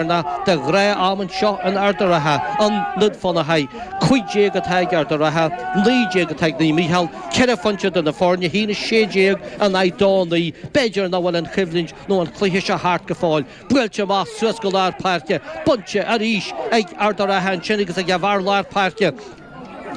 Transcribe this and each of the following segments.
Bearna de dhráma anseo in Ard-a-Ratha, i nDún Fionnachaidh. Cúig déag atá ag Ard a Ratha, naoi déag atá ag Naomh Mícheál, ceithre phointe idir na foirne, haon a sé déag in aghaidh dó naoi. B'fhéidir nach bhfuil an choimhlint nó an cluiche seo thart go fóill. Buailte amach suas go lár páirce, bainte arís ag Ard a Ratha ansin agus ag a bhfear lár páirce.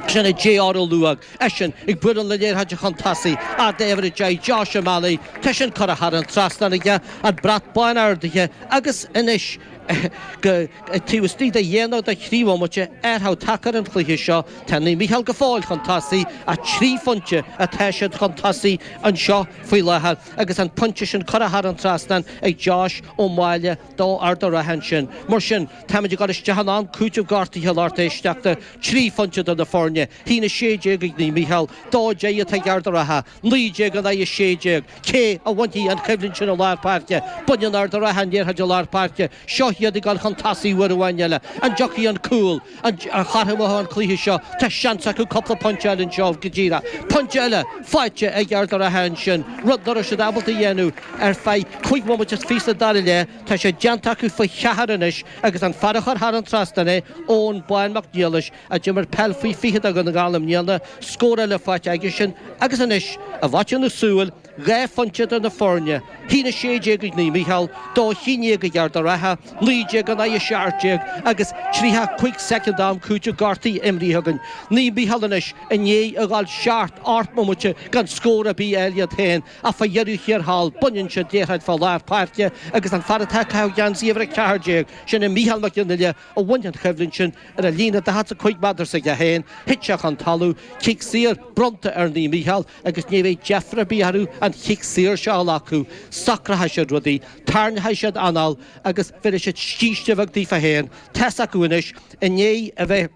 Sin é JR Ó Maolmhuaidh, eisean ag bualadh na liathróide chun tosaigh, a fhad uimhir a deich Josh O'Malley, tá sin curtha thar an trasnán aige, an brat bán ardaithe agus anois taobh istigh de dhá nó de thrí bhomaite, athrú tagtha ar an chluiche seo, tá Naomh Micheál go fóill chun tosaigh ach trí phointe atá siad chun tosaigh anseo faoi láthair agus an pointe sin curtha thar an trasnán ag Josh Ó Máille. do Ard a' Ratha ansin. Mar sin, táimid ag dul isteach in am cúitimh gortaithe a lucht éisteachta, trí phointe idir na foirne, haon 16 ag Naomh Mícheál, dó deich atá ag Ard a' Ratha, 19 in aghaidh 16. Cé a bhainfidh an choimhlint sin i lár páirce? Baineann Ard a' Ratha an liathróid i lár páirce, seo iad ag dul chun tosaigh uair amháin eile, an dtiocfaidh an cúl? A chothromódh an cluiche seo? Tá seans acu cúpla pointe eile anseo go díreach. Pointe eile faighte ag Ard a' Ratha ansin, rud nach raibh siad ábalta a dhéanamh ar feadh cúig bhomaite is fiche sa dara leath. Tá sé déanta acu faoi cheathair anois agus an fear a chuir thar an trasnán é, Eoin Bán Mac Niallais, a d'imir peil faoi 20 do Dhún na nGall i mbliana, scór eile faighte aigesean agus anois, i bhfaiteadh na súl, Dhá phointe idir na foirne. Haon 16 ag Naomh Micheál, dó 11 ag Ard a' Ratha, 19 in aghaidh 17 agus 35 soicind d'am cúitimh gortaithe imrithe againn. Naomh Micheál anois i ndiaidh a dhul seacht ocht bomaite gan scór ar bith eile iad féin ach fá dheireadh thiar thall, baineann siad liathróid fá lár páirce agus an fear atá ag caitheamh geansaí uimhir 14, sin é Micheál Mac Fhionnaile, a bhain an choimhlint sin ar an líne 45 méadar s'aige féin, thit sé chun talamh, cic saor, bronnta ar Naomh Micheál. agus ní bheidh deifir ar bith orthu an cic saor seo a ghlacadh, socróchaidh siad rudaí, tarraingeoidh siad anáil agus bhéarfaidh siad scíste bheag daofa fhéin, tá's acu anois, i ndiaidh a bheith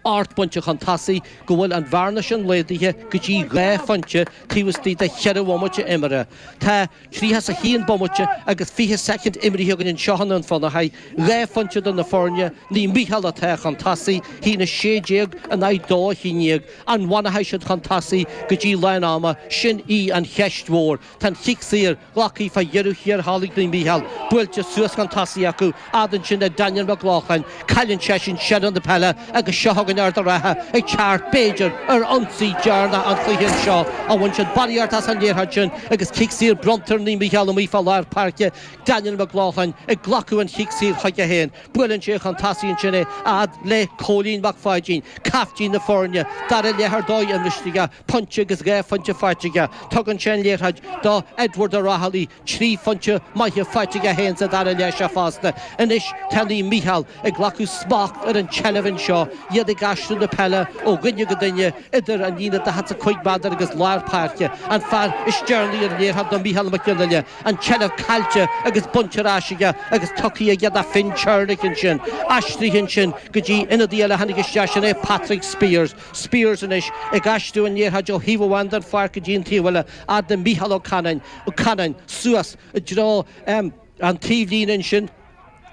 ocht bpointe chun tosaigh, go bhfuil an bhearna sin laghdaithe go dtí dhá phointe taobh istigh de cheithre bhomaite imeartha. Tá. Tríocha 's a haon bomaite agus fiche soicind imrithe againn anseo i nDún Fionnachaidh, dhá phointe idir na foirne, Naomh Micheál atá chun tosaigh, hAon 16 in aghaidh dó 11. An bhfanfaidh siad chun tosaigh go dtí lán ama, sin í an cheist mhór. Tá an cic saor glactha fá dheireadh thiar thall ag Naomh Micheál buailte suas chun tosaigh acu, fhad ansin ag Daniel Mac Lochlainn, cailleann seisean seilbh na peile agus seo chugainn Ard a' Ratha ag teacht, b'fhéidir, ar ionsaí deireanach an chluiche anseo, ach bhain seisean barraíocht as an liathróid sin agus cic saor bronnta ar Naomh Micheál amuigh fá lár páirce, Daniel Mac Lochlainn ag glacadh an cic saor chuige féin, buaileann sé chun tosaigh ansin é, a fhad le Cóilín Mac Pháidín, caiftín na foirne, dara leath ar dóigh imrithe aige, pointe agus dhá phointe faighte aige, tugann sé an liathróid do Edward O'Reilly, Trí phointe maithe faighte aige 1-2 le seo fosta. Anois tá Naomh Micheál ag glacadh smacht ar an tseilbh anseo, iad ag aistriú na peile ó dhuine go duine idir an líne daichead is a cúig méadar agus lár páirce. An fear is deireanaí ar an liathróid ná Micheál Mac Gill-Fhinneadha, an tseilbh caillte agus bainte ar ais aige agus tugtha aige do Finn Chernick ansin. Aistrithe ansin go dtí ionadaí eile a tháinig isteach, sin é Patrick Speers. Speers anois ag aistriú an liathróid ó thaobh amháin den pháirc go dtí an taobh eile. A fhad le Mícheál Ó Canainn, Ó Canainn, suas i dtreo an taobhlíne ansin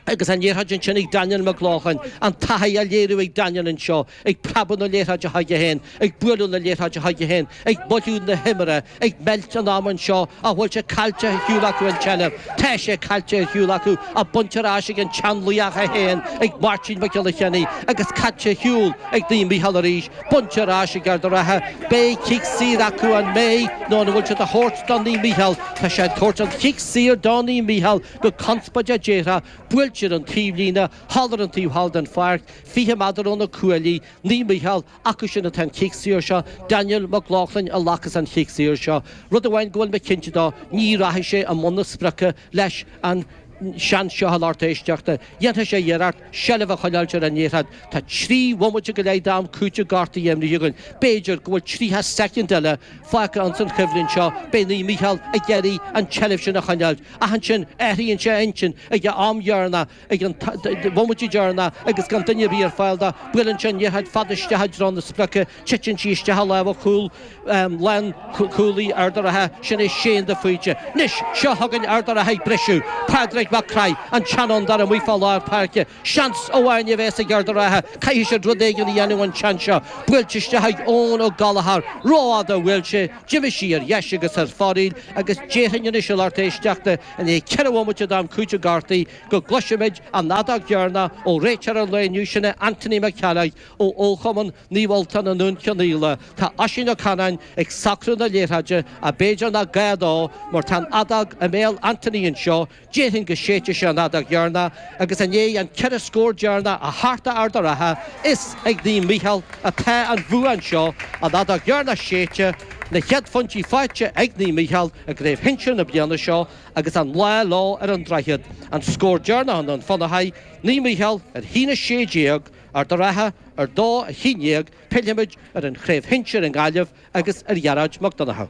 agus an liathróid ansin ag Daniel McLaughlin, an taithí á léiriú ag Daniel anseo, ag preabadh na liathróide chuige féin, ag bualadh na liathróide chuige féin, ag moilliú na himeartha, ag meilt an ama anseo, an bhfuil sé caillte ar shiúl acu an tseilbh, tá sé caillte ar shiúl acu, bainte ar ais ag an tseanlaoch é féin, ag Máirtín Mac Giolla Chainnigh, agus caillte ar shiúl ag Naomh Mícheál arís. Bainte ar ais ag Ard a' Rátha, beidh cic saor acu an mbeidh nó an bhfuil sé dá thabhairt do Naomh Mícheál? Tá sé ag tabhairt an chic saor do Naomh Mícheál go conspóideach déarfá, buailte ar an taobhlíne, thall ar an taobh thall den pháirc, 20 méadar ó na cuaillí, Naomh Mícheál, acu sin atá an cic saor seo, Daniel Mac Lochlainn a ghlacas an chic saor seo. Rud amháin go bhfuil mé cinnte dó, ní rachaidh sé i mbun na sprice leis an seans seo a lucht éisteachta, dhéanfaidh sé iarracht seilbh a choinneáilt ar an liathróid. Tá trí bhomaite go leith d'am cúitimh gortaithe imrithe againn. B'fhéidir go bhfuil tríocha soicind eile fágtha ins an choimhlint seo. Beidh Naomh Mícheál ag iarraidh an tseilbh sin a choinneáilt. Ach ansin athraíonn sé a intinn ag an am dheireanach, ag an bhomaite dheireanach agus gan duine ar bith ar fáil dó. Buaileann sé an liathróid fada isteach i dtreo na sprice. Titeann sí isteach i lámha cúl lánchúlaí Ard a' Rátha, sin é Séan de Faoite. Anois, seo chugainn Ard a' Rátha ag briseadh, Pádraig Mac Craith, an tseanfhondúir amuigh fá lár páirce. Seans amháin a bheas ag Ard a' Rátha, caithfidh siad rud éigin a dhéanamh an tseans seo. Buailte isteach ag Eoin Ó Gallchóir, rófhada a bhuail sé, d'imigh sí ar dheis agus ar fóraoil agus déarfainn anois a lucht éisteachta, i ndiaidh ceithre bhomaite d'am cúitimh gortaithe, go gcloisfimid an fheadóg dheireanach ó réiteoir an lae inniu, sin é Anthony Mac Ceallaigh. Ó fhochumann Naomh Ultán i nDún Cionnaola, tá Oisín Ó Canainn ag socrú na liathróide ach b'fhéidir nach gá dó mar tá an fheadóg i mbéal Anthony anseo, déarfainn go séidfidh sé an fheadóg dheireanach agus i ndiaidh an ceithre scór deireanach a chartadh Ard a' Rátha, is ag Naomh Micheál atá an bhua anseo, an fheadóg dheireanach séidte, na chéad phointí faighte ag Naomh Micheál i gcraobh shinsir na bliana seo agus an lá leo ar an Droichead, an scór deireanach i nDún Fionnachaidh Naomh Micheál a haon a sé déag, Ard a' Rátha a dó a haon déag pillfimid ar an chraobh shinsir i nGaillimh agus ar Ghearóid Mac Donnchadha.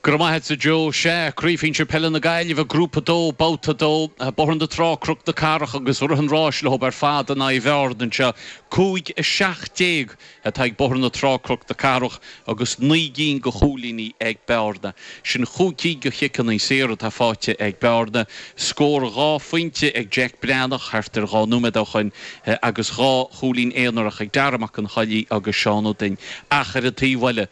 Go raibh maith agat, a Joe. Sea, Craobh Shinsir Peile na Gaillimhe, Grúpa 2, Babhta 2. Bóthar na Trá, Cnoc na Cathrach agus rith an rás leob ar fad in aghaidh Bhearna anseo. 5:17. atá ag Bóthar na Trá-Cnoc na Cathrach agus naoi gcinn go chúilíní ag Bearna. Sin chúig cinn go chiceanna saor atá faighte ag Bearna, scór dhá phointe ag Jack Breathnach thart ar dhá nóiméad ó shoin agus dhá chúilín aonarach ag Darragh Mac an Choilligh agus Seán Ó Duinn. Ach ar an taobh eile,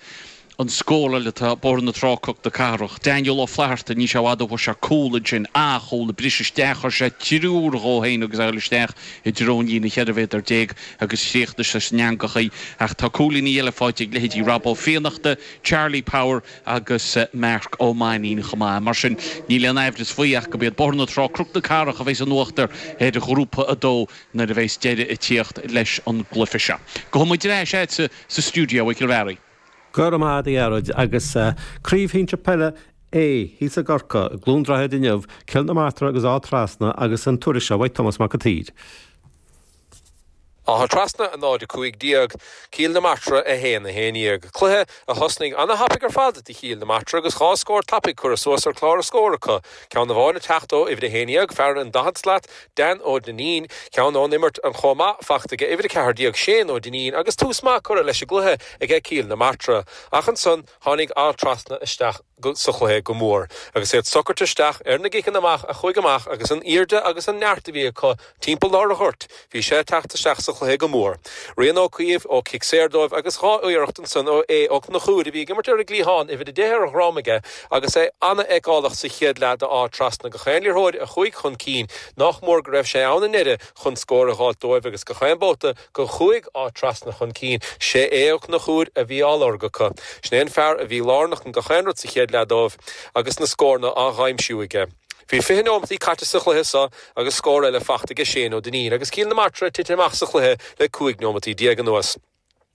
an scóráil le Bóthar na Trá-Cnoc na Cathrach, Daniel Ó Flatharta, níl sé i bhfad ó fuair sé cúl ansin, an-chúl a bhris isteach, chuir sé triúr dhó fhéin agus a ghoil isteach i dtreo an líne cheithre mhéadar déag agus chríochnaigh sé san eangach í, ach tá cúilíní eile fáighte ag leithéidí Rob Ó Fiannachta, Charlie Power agus Marc Ó Mainnín chomh maith, mar sin níl aon aimhreas faoi ach go b'iad Bóthar na Trá-Cnoc na Cathrach a bheidhs in uachtar ar Ghrúpa 2 nuair a bheidhs deireadh a' tíocht leis an gcluife seo. Gabhfaidh muid ar ais a'dsa sa stiúideo a Chárthaigh. Go raibh maith agat a Ghearóid, agus craobh shinsir peile A thíos i gCorcaigh, i gCluain Droichid inniu, Cill na Martra agus Áth Trasna agus an tuairisc seo uaidh Tomás Mac a tSaoir. Áth Trasna 0, 15, Cill na Martra 1, 11, cluiche a thosnaigh ana thapaidh ar fad do Chill na Martra agus dhá scór tapaidh curtha suas ar chlár a scór acu, Ceann amháin ag teacht ó uimhir a haon dhéag, fear an daichead slat, Dan Ó Duinnín. Ceann ón imirt ann chomh maith, faighte aige uimhir a ceathair déag, Shane Ó Duinnín, agus tús maith curtha leis an gcluiche aige Cill na Martra. Ach ansan tháinig Áth Trasna isteach sa chluiche go mór agus iad socairt isteach ar na gciceanna amach a chuaigh amach agus an aoirde agus an neart a bhí acu Timpeall lár an ghoirt bhí sé ag teacht isteach sa chluiche go mór. Rian Ó Caoimh ó chic saor dóibh agus dhá iarracht ansan ó Aodh Ó Cnochúir a bhí ag imirt ar an gcliathán, uimhir a deich ar a dhroim aige agus é an-fheiceálach sa chéad leath d'Áth Trasna gach aon liathróid a chuaigh chun cinn, nach mór go raibh sé ann i ndeireadh chun scór a dh'fháilt dóibh agus gach aon babhta go chuaigh Áth Trasna chun cinn, 'sé Aodh Ó Cnochúir a bhí á lorg acu. Sin é an fear a bhí lárnach in gach aon rud sa chéad leath dóibh agus na scóranna á dh'aimsiú aige. Bhí fiche nóimeataí caite sa chluiche seo agus scór eile faighte aige Shane Ó Duinnín agus Cill na Martra tite amach sa chluiche le cúig nóimeataí déag anuas.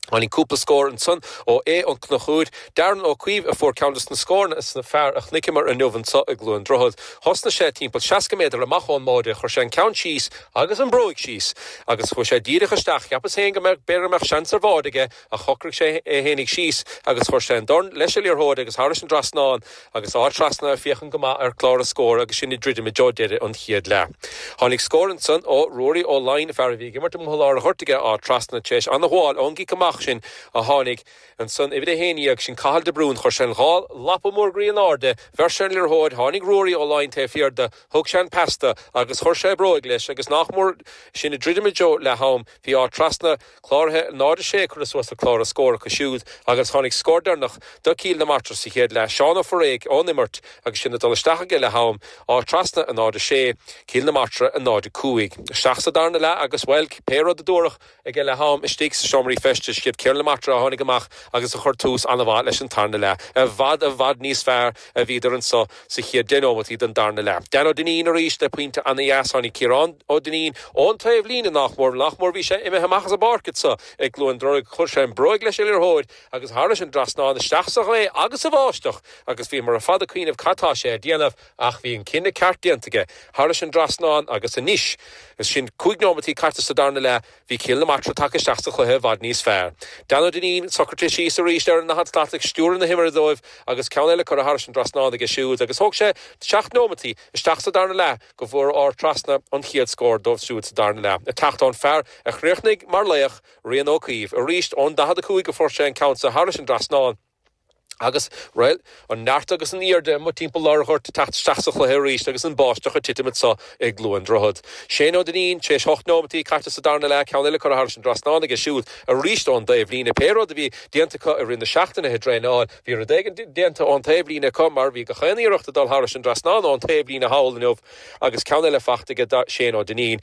Tháinig cúpla scór ansan ó Aodh Ó Cnochúir. Darren Ó Caoimh a fuair ceann des na scóranna is na fearr a chnoiceamar inniu anso i gCluain Droichead. Thosnaigh sé timpeall seasca méadar amach ón mbáide, chuir sé an ceann síos agus an bhróig síos agus chuaigh sé díreach isteach. Cheapas féin go mbeadh, b'fhéidir go mbeadh seans ar bháide aige Ach shocraigh sé é fhéinig síos agus chuir sé an dorn leis an liathróid agus thairis an trasnán agus Áth Trasna ag féachaint go maith ar chlár a scóir agus sinn ag druidim i dtreo deireadh an chéad leath. Tháinig scór ansan ó Ruairí Ó Laighin, fear a bhí ag imirt amuigh lár a ghoirt aige Áth Trasna tar éis an-ghabháil ón gcic amach sin a tháinig ansan uimhir a haon dhéag sin Cathal de Brún chuir sé an dhá lapa mór groí in airde, bheir sé an liathróid, tháinig Ruairí Ó Laighin taobh thiar de, thug sé an pas do agus chuir sé a bhróig leis agus nach mór sinn ag druidim i dtreo leath-am, bhí Áth Trasna. Cláraithe náid a sé, curtha suas ar chlár na scór acu siúd agus tháinig scór deireanach do Cill na Martra sa chéad leath, Seán Ó Foiréidh ón imirt agus sin ag dul isteach aige leath-am, Áth Trasna a náid a sé, Cill na Martra a náid a cúig. Isteach sa darna leath agus, bhuel, pé rud a dúradh aige leath-am, istigh sa seomraí feistis siad Cill na Martra a tháinig amach agus a chuir tús an-mhaith leis an tarna leath, i bhfad, i bhfad níos fearr. a bhíodar anso sa chéad deich nóimeataí den darna leath. Dan Ó Duinnín arís le pointe ana-dheas. Tháinig Ciarán Ó Duinnín ón taobh líne nach mór, nach mór bhí sé imithe amach as an bpáirc anso i gCluain Droichead, chuir sé an bróig leis an liathróid agus thairis an dtrasnán isteach sa ghaoth agus sa bháisteach agus bhíomar ar fad ag cuimhneamh cad tá sé a dhéanamh ach bhí an cinneadh ceart déanta aige thairis an dtrasnán agus anois sin cúig nóimeataí caite sa darna leath, Bhí Cill na Martra tagtha isteach sa chluiche i bhfad níos fearr. Dan Ó Duinnín, socraithe síos arís ar an ndaichead slat ag stiúradh na himeartha dóibh agus ceann eile curtha thairis an dtrasnán aige siúd agus thóg sé seacht neomataí isteach sa darna leath go bhfuair Áth Trasna an chéad scór dóibh siúd sa darna leath ag teacht ón fear a chríochnaigh mar laoch, Rian Ó Caoimh, arís ón 45 a fuair sé an ceann seo thairis an dtrasnán. Agus, bhuel, an neart agus an aoirde amuigh timpeall lár an ghoirt ag teacht isteach sa chluiche arís agus an báisteach ag titim anseo i gCluain Droichead. Shane Ó Duinnín, tar éis ocht nóimeataí caite sa darna leath, ceann eile curtha thairis an dtrasnán aige siúd arís ón dtaobhlíne. Pé rud a bhí déanta acu i rith na seachtaine le draenáil, bhí rud éigin déanta ón taobhlíne acu mar bhí gach aon iarracht ag dul thairis an dtrasnán ón taobhlíne thall inniu agus ceann eile fachta aige Shane Ó Duinnín.